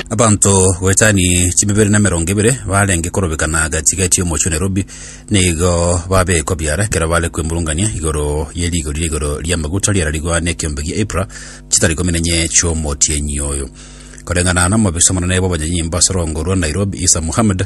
Abanto goetani chibibere na emerongo ebere barenge korobeka na gatiga etie omochie o Nairobi nigo babekwa biara ekero bare kwemurungania igoro ye rigori ria igoro ria amaguta riararigwa na ekiombe gia Ipra chitari kominenye chiomotienyi oyo. Koreng'ana na omobisa omonene bw'abanyanyimbo ase orongo rwa Nairobi Isa Mohammed,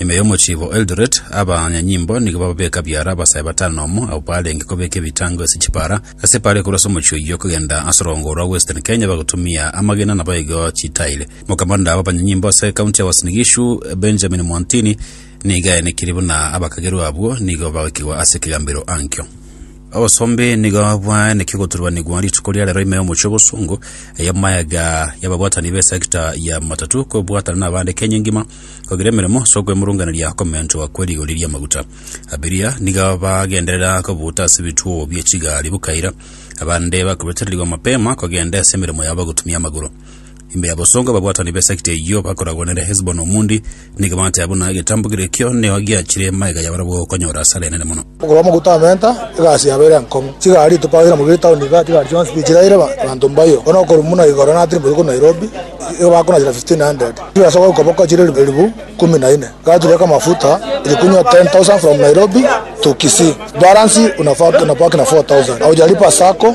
Ime y'omochibi o Eldoret, abanyanyimbo nigo bababeka biara abasae batano na omo abwo barenge kobeka ebitango ase chipara ase epaari korwa ase omochie oyio kogenda ase orongo orwa Western Kenya bagotumia amagena na boigo chitairi. Mokamanda bw'abanyanyimbo ase ekaunti ya Uasin Gishu, Benjamin Mwantini, nigo aenekirie buna abakagerwa abwo nigo bagoikigwa ase ekegambero ankio. Obosombi nigo bwaenekirie goturubanigwa rituko ria rero ime y'omochie o Bosungu, ey'amaega y'ababwatani b'esecta ya matatu kobwatana nabande Kenya engima, kogira emeremo ase okwemurunganeria komenchwa kwe rigori ri'amaguta. Abiria nigo bagenderera kobuta ase ebituo bie chigari bokaira, abande bakobetererigwa mapema kogenda ase emeremo yabo gotumia amagoro. Ime y'abosongo ababwatani b'esekta eyio bakoragwanera Hesiboni Omundi, nigo bateba buna egetambo keria ekio neo giachire magega y'abarabwo konyora asara enene mono. Okorwa mogote amenta, egasi yabo ere enkong'u. Chigari tibagera mogiya etaoni iga, chigari chionsi tichiraire abanto mbayo. Bono okorwa buna igoro natiri botuko Nairobi, iga bakonachera 1500. Chibesa gokoboko chire elifu ikomi na ine. Gaturia kamafuta ilikunywa 10,000 from Nairobi to Kisii. Balance unabaki na 4,000. Haujalipa sacco.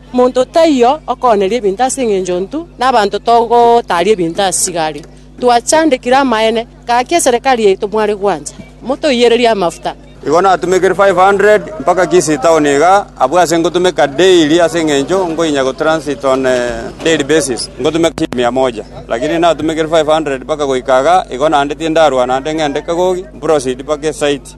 Monto taiyo okooneria ebinto ase engencho ntu nabanto togotaaria ebinto ase chigari. Twachandekire amaene, gaki eserekari yaito mware gwancha, motoiyererie amafuta. Igo natumekire 500 mpaka Kisii town iga, abwo ase ngotumeka daily ase engencho nkoinya go transit on a daily basis, ngotumeka shilingi mia moja. Lakini natumekire 500 mpaka goika iga, igo naende tindarwa naende ng'ende kagogi, mproceed mpaka esite.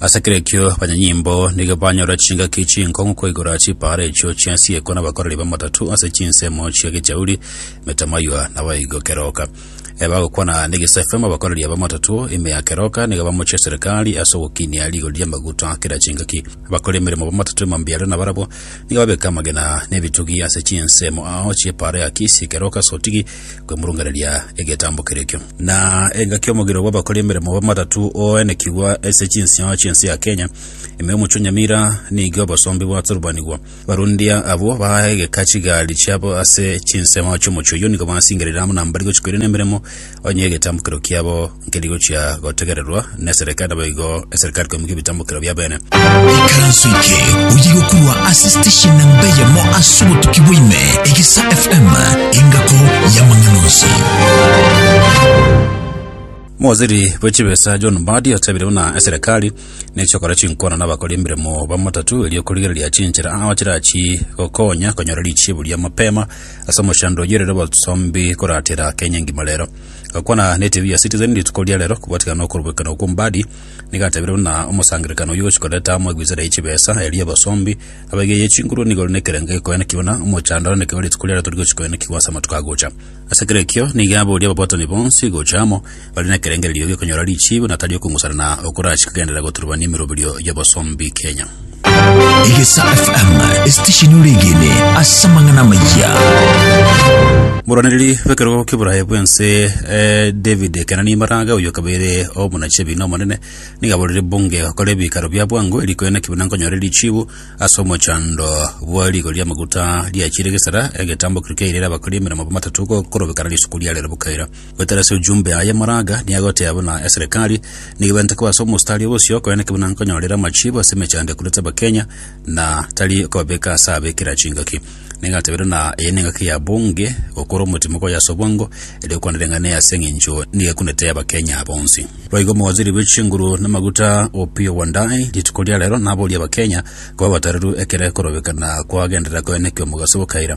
Ase kera ekio abanyanyimbo nigo banyora chingaki chinkong'u koigora chipaara echio chi'asiekwa nabakoreri b'amatatu ase chinsemo chia gechauri, emetamaiywa na baigo keroka. E bagokwana negesafema abakoreri b'amatatu ime ya keroka nigo bamochia eserekari ase ogokinia rigori ri'amaguta a kera chingaki. Abakori emeremo b'amatatu ime mbiaro nabarabwo nigo babeka amagena na ebitugi ase chinsemo ao chi'epaara ya Kisi, keroka, sotigi, kwemurunganeria egetambo kerekio. Na engaki y'omogiro bw'abakori emeremo b'amatatu oenekigwa ase chinsio chi'ense ya Kenya, ime omochie o Nyamira nigo obosombe bwaturubanigwa. Barundia abwo baegeka chigari chiabo ase chinsemo chi'omochie oyio nigo basingerire amo nambari gochia koirana emeremo onye egetambo kerekio kiabo nkeri gochia gotegererwa neserikali naboigo eserikali koimokia ebitambokero biabene. Ikaranso eke oye gokurwa ase station namba eyemo ase obotuki bwaime Egesa FM engako y'amang'ana onsi. Mowaziri bwe chibesa John Mbadi otabire buna eserekari nechia gokora chinkwana nabakori emeremo bamatatu erio korigereria chinchera ao chirachi gokonya konyora richibu ria mapema ase omochando oyorire obosombi koratera Kenya engima rero. Gakwana netv ya Citizen rituko ria rero kobwatikana nokorobokera okwo Mbadi nigo atebirie buna omosangererekano oyio gochia koreta amo egwisera ye chibesa eria abasombi abaigerie chinguru nigo rinde ekerengo gekoenekigwa buna omochando oenekigwe rituko riarero tori gochia koenekigwa ase amatuko agocha. Ase kera ekio nigo aboria ababwatani bonsi gocha amo bare nekerengererio giokonyora richiibo na tari okong'usana na okorachi kogenderera goturubania emeroberio y'abasombi Kenya. Egesa FM esitesheni oregene ase amang'ana amayia. Moraneri bw'ekerogo ki'Oboraia bw'ense eh, David Kenani Maraga oyo kabaire omonachebi na omonene niga aborire bunge gokora ebikaro bia bwango erikoe naki buna nkonyore richibu ase omochando bwa rigo ri'amaguta riachire gesera egetambo keria kiairere abakori emeremo bamatatu gokorobekana risuku ria rero bokaira Goetera ase ojumbe aye Maraga nigo agotea buna eserekari nigo ebente koba ase omostari obosio korende ki buna nkonyorera amachibo ase emechando ekurete Abakenya na tari kobabeka ase abekera chingaki. Nigo atebeire buna eye nengaki ya bunge gokora omotimo koya ase obwango erio okwana ring'ana ase eng'encho nigo ekunete Abakenya bonsi. Boigo omowaziri bwe chinguru na amaguta Opiyo Wandayi rituko ria rero naboria Abakenya koba abatereru ekero ekorobekana kwagenderera koenekia omogaso bokaira.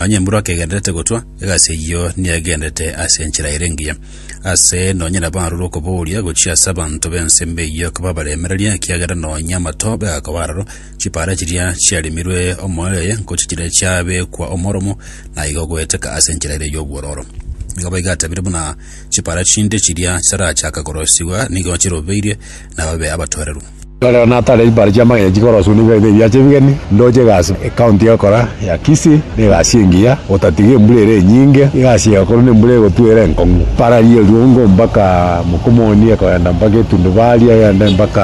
Nonya embura kegendererete gotwa, egasi eyio negendererete ase enchera ere engiya. Aase nonya nabarorwe okobooria gochia ase abanto b'ense embe eyio kobabaremereria, ekiagera nonya amato bagakoba aroro, chipaara chiria chiarimirwe omoerio oye ngochia chiria chiabekwa omoromo, na igo goeteka ase enchera ere y'obwororo. Nigo boigo atabire buna chipaara chinde chiria chitarachaka korosigwa nigo chirobeirie nababe abatoereru. Ekero nataarire chipaara chi'amagena chikoroswa na ebiagera ebiacha ebigeni, ndoche egasi ekaunti egokora ya Kisii na egasi engiya, gotatiga embura ere enyinge, egasi egakorwa na embura egotwa ere enkong'u. Para ria Eruongo mpaka Mokomoni ekoenda mpaka Etundubari egende mpaka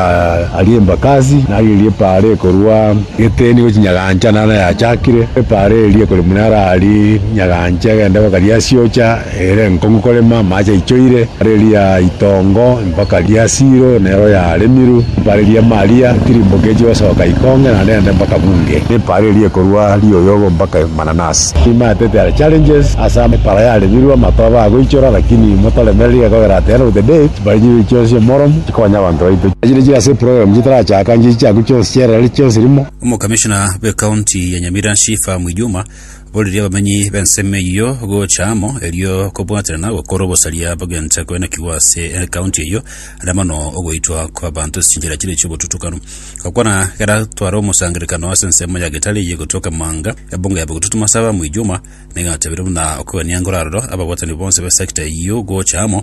aria Embakasi, nario erio epaara ekorwa Geteni gochia Nyagancha naro yachakire. Epaara eria ekore buna ara aria Nyagancha egende mpaka Riasiocha. Ere enkong'u korema amache aichoire, riria itongo mpaka ria Silo nero yaremirwe, mpare ria Maria tirimboke echi gosoka ikonge na rende mpaka bunge, na mpare erie korwa rioyogo mpaka mananasi. Timaeteti are challenges ase mpara yaremirwe amato aba agoichora lakini motoremereri ekogera at the end of the day chipara chiria chionsi omoromo chikonya abanto baito. Chiria chiri ase eprogram chitarachaka nchichiaku chionsi chierere chionsi rimo. Omokamishona bw'ekaunti ya Nyamira Shifah Mwijuma Boririe abamanyi b'ensemo eyio gocha amo, erio kobwaterana gokore obosaria bogenta koenekigwa ase ekaunti eyio, na mono ogoitwa kw'abanto ase chinchera chiria chi'obotutukanu. Gokwana geratware omosangererekano ase ensemo ya Getari eyio egotoka Emanga, ebunga ya Bogitutu Masaba Mwijuma, nigo yatabeirwe buna okogania enkoro aroro ababwatani bonsi be sector eyio gocha amo,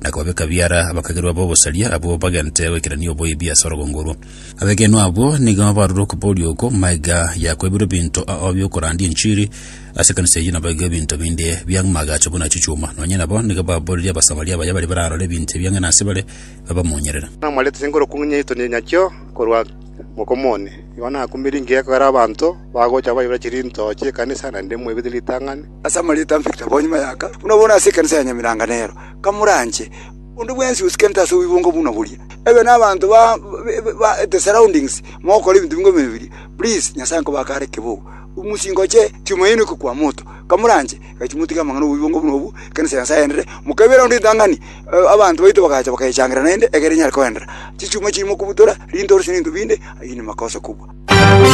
na kobabeka biara abakagerwa b'obosaria abwo bagente goikerania oboibi ase orogongo orwo. Abegenwa abwo nigo barure okoboria oko, Maiga yakoibirwe ebinto ao bi'okorandia enchiri ase ekanisa eyio nabo igo ebinto binde biamagacha buna chichuma. Nonya nabo nigo baborerie Abasamaria abaya baria bararore ebinto ebio ang'e nase bare, babamonyerere. Namwarete ase enkorokio ng'a nyaito nyachio korwa mokomo one. Igo nakumirie ngegera abanto bagocha baibera chirinto chi'ekanisa, naende mwaibete ritang'ani. ase amarieto a Victor bonyuma y'aka, buna bono ase ekanisa ya Nyamiranga nero, kamoranche onde bwensi osikente ase oboibongo buna boria. Ebe nabanto ba the surroundings mogokora ebinto bingoma ebiya, please Nyasaye nkobake are kibogo, omosie ngoche Tumaini oke kwa moto, kamoranche gaki motige amang'ana oboibongo buna obwo, ekanisa ya Nyasaye enderere, mokebera onde ritang'ani, abanto baito bagacha bakayechangereria naende, egere enyare koenderera. Chichuma chiri mokobutora, rintoro chiri nto binde, aginde makosa kobua.